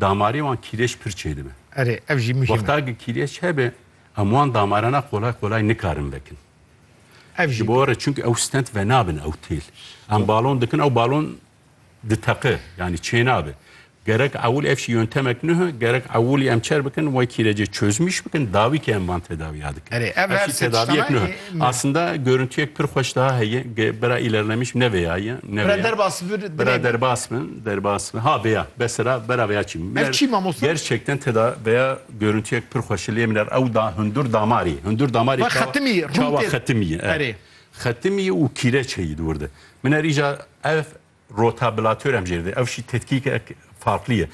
Damarê wan kîlêş pir çêdibe. Erê, ev jî muhîm e. Wexta ki kîlêş hebe, em wan damarana qolay qolay nikarin vekin. Ev jî. Ji bo re çimkî ew stent venabin ew têl. Em balon dikin ew balon diteqe, yanî çênabe. Gerek ewil ev jî yöntemek nuha, gerek ewilî em çer bikin wê kîlêcê çözmîş bikin, dawî ki em van tedawiya dikin. Erê, ev her se tiştana yê. Aslında görüntüyek pir xweş daha heye, bira îlerlemiş ne vêya ye, ne vêya. Bira derbas bir, dilê me. Bira derbas bin. Derbas ha veya besera bera veya çî min er gerçekten teda veya görüntüyek pir xweşi lê min er ew da hundur damarî hundur damarî xetimî çawa xetimî erê xetimî û kîreçeyî di wir de min er îca ev rotablatör em jê de ew şî tetkîkek farqlî ye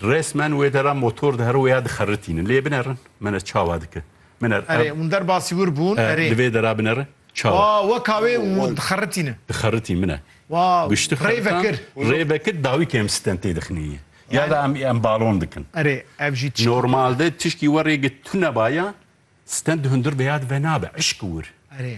resmen wê de ra motor di hero weya dixeritînin lê binerin min e çawa dike Binêr. Erê, hûn derba sîwir bûn, erê. Di vê dera binêr e. Çawa. Wa, weka wê û dixeritî ne. Dixeritî min e. Wa, rê vekir. Rê vekir dawî ke em stentê dixinî ya da em em balon dikin. Erê, ev jî tişkî. Normal de tişkî we rê girt. Tu nebaya stent di hundir vêya di ve nabe. Eşq wir. Erê.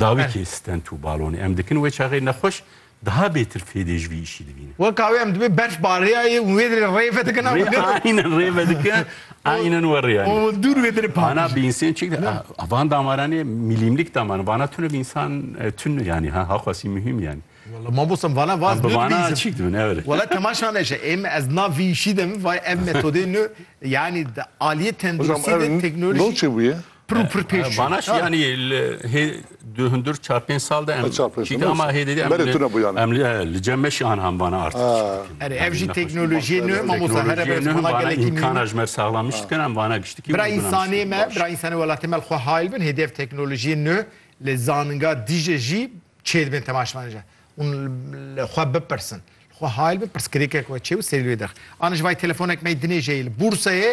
Dawî kê stent û balonê em dikin wê çaxê nexweş daha bêtir fêdê ji vî îşî dibîne. Weka wê em dibê berf bariyayê û wê dirê rê vedikin a min. Aynen rê vedikin aynen we rê anî. Û dûr wê dirê pakijî. Vana bi însen çik de a van damaran ê milîmlik damaran vana tune bi însan tune yanî ha ha xwesî muhîm yanî. Wela ma bosam vana vaz nû dibî însan. Çik dibin evet. Wela temaşa neşe êm ez na vî îşî dim vay ev metodê nû yanî aliyê tenduristî de teknolojî. Hocam ev nû çi bûye? Pir û pir pêş çû. Vana şî yanî li hê du hundir çar pênc sal de em çîka ma hê dêdî em em li cem me şî an vana artî. Erê ev jî teknolojiyê nû mamosta here be nû vana gelekî îmkana ji me saxlam nîş dikin em vana giştikî bira însanê me bira însanê welatê me li xwe hayl bin hêdî ev teknolojiyê nû li zaninga dîje jî çê dibin tema ji me re hûn li xwe bipirsin li xwe hayl bin pirsgirêkek we çê û serî li wê dirxin. Ana ji vay telefonek me yê dinêjeyê li bûrseyê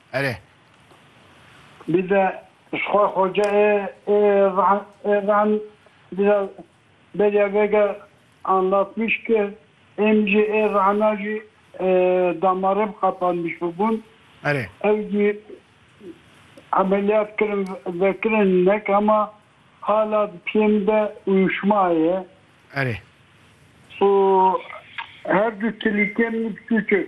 Erê. Bîde ji xwe xoce ê ê rehn ê rehn bîde beriya vêge anlatmiş ke êm jî ê rehna jî damarêm qepanmiş bûbûn. Erê. Ew jî emeliyat kirin vekirin nek hema hala di piyê min de uyuşma heye. Erê. Û her du tilîkên min çûçik.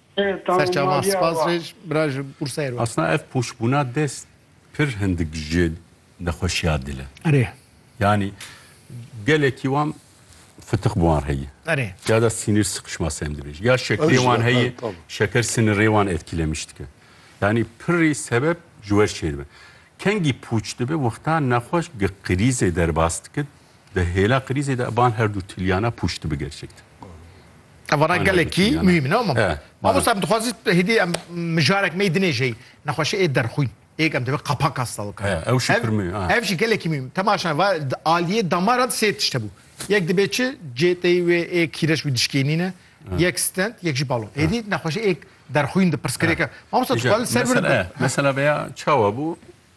Serçava spas rêj bira ji Bursayê re. Asna ev poşbûna dest pir hindik ji nexweşiya dil e. Erê. Yanî gelekî wan fitiq bi wan re ye. Erê. Ya da sînir siqişma sem dibêjî. Ya şekerê wan heye, şeker sinirê wan etkîlemiş dike. Yanî pirrî sebeb ji wer çêdibe. Kengî pûç dibe wexta nexweş gi qirîzê derbas dike, Di hêla krîzê de van her du tilyana pûşti bi gerçek din. Tevana gelekî muhîm ne ma. Mamosta em dixwazî hêdî em mijarek me dinê jey nexweşe ê derxwîn. Êk em divê qapaka stal bikin. Ew jî pir muhîm. Ev jî gelekî muhîm. Temaşan va aliyê damaran sê tişt hebû. Yek dibê çi cêteyî wê ê kîreç wî dişkênîne. Yek stent, yek jî balon. Hêdî nexweşe êk derxwîn di pirsgirêk e. Mamosta tu xwal ser vir. Mesela veya çawa bû